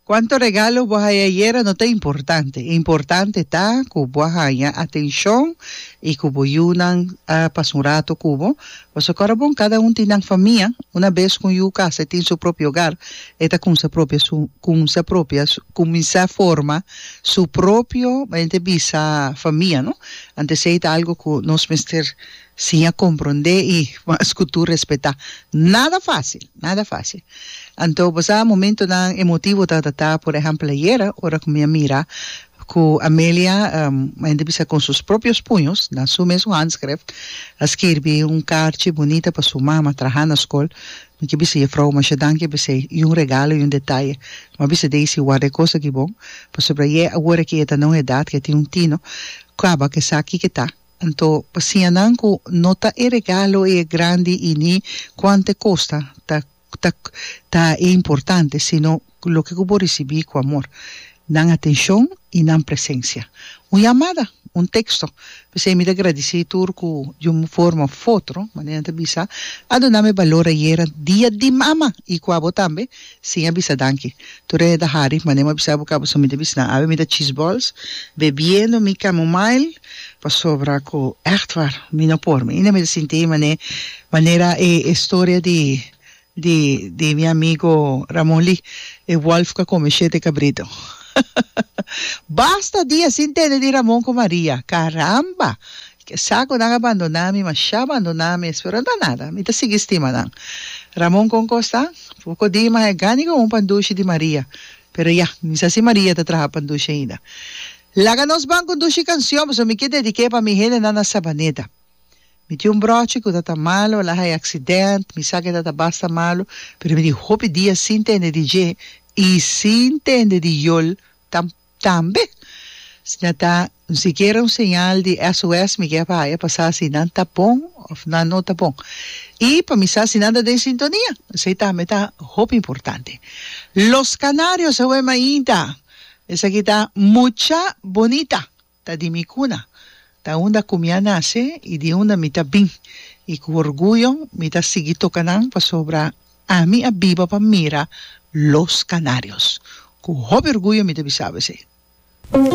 Cuanto regalo bo a haya ayera no ta importante. Importante ta cu bo a haya atencion y cu bo yu nan a pasa un rato cu bo. Pasobra ora bon cada un tin nan famia, una bes cu un yu casa e tin su propio hogar, e ta cumsa propia su, cumsa propia su, cuminsa forma su propio, bai ta bisa famia, no? Anto esey ta algo cu nos mester Sin a comprende y mas cu tur respeta. Nada facil, nada facil. Anto bo sa momentonan emotivo ta ta ta, por ehempel ayer ora cu mi a mira cu Amelia a yende bisa con sus propios puños, na su mes handschrift, a skirbi un carchi bunita pa su mama traha na scol. Mi ke bisa jefrouw masha danki, a bis'ei, y un regalo y un detaye. Mi a bisa Daisy, warda e cos aki bon, pasobra ye awor aki e ta na un edad cu e tin un tino, caba cu e sa kiko e ta. Anto, pa siña nan cu no ta e regalo e grandi y ni cuanto e costa ta ta ta e importante, sino loke cu bo ricibi cu amor, nan atencion y nan presencia. Un yamada, un texto, p'esey mi ta gradici tur cu di un forma of otro, manera nan ta bisa, a duna mi balor ayera Dia di Mama y cu abo tambe, sin a bisa danki. Tur e ta hari, manera mi a bisa bo cabo, so mi ta bisa nan, awe mi ta cheese balls, bebiendo mi chamomile, Pasobra ku echtwar mi no por, mi no mi ta sinti mané manera e e storia di di di mi amigo Ramon Lee, e wòlf ku a kome shete kabritu. Basta dia sin tende di Ramon ku Maria. Karamba! Sa ku nan a bandoná mi, mashá bandoná mi, pero no ta nada, mi ta sigui stima nan. Ramon kon kos ta? Poko di mas e gani kon un pandushi di Maria. Pero ya, mi sa si Maria ta traha pandushi ainda. Laga nos ban conduci cancion pasobra mi ke dediké pa mi hendenan na Sabaneta. Mi tin un brochi cu ta ta malu, el a haya accident, mi sa cu e ta ta basta malu, pero mi tin hopi dia sin tende di dje y sin tende di yol tam tambe. Si nan ta un sikiera un señal di SOS mi kier pa haya pa sa si nan ta bon of nan no ta bon y pa mi sa si nan ta den sintonia, esey tambe ta hopi importante. Los Canarios aweh mainta. Esaki ta mucha bonita. Ta di mi cuna. Ta unda cu mi a nace y di unda mi ta bin. Y cu orguyo mi ta sigui toca nan pasobra ami a biba pa mira Los Canarios. Cu hopi orguyo mi ta bisaba esey.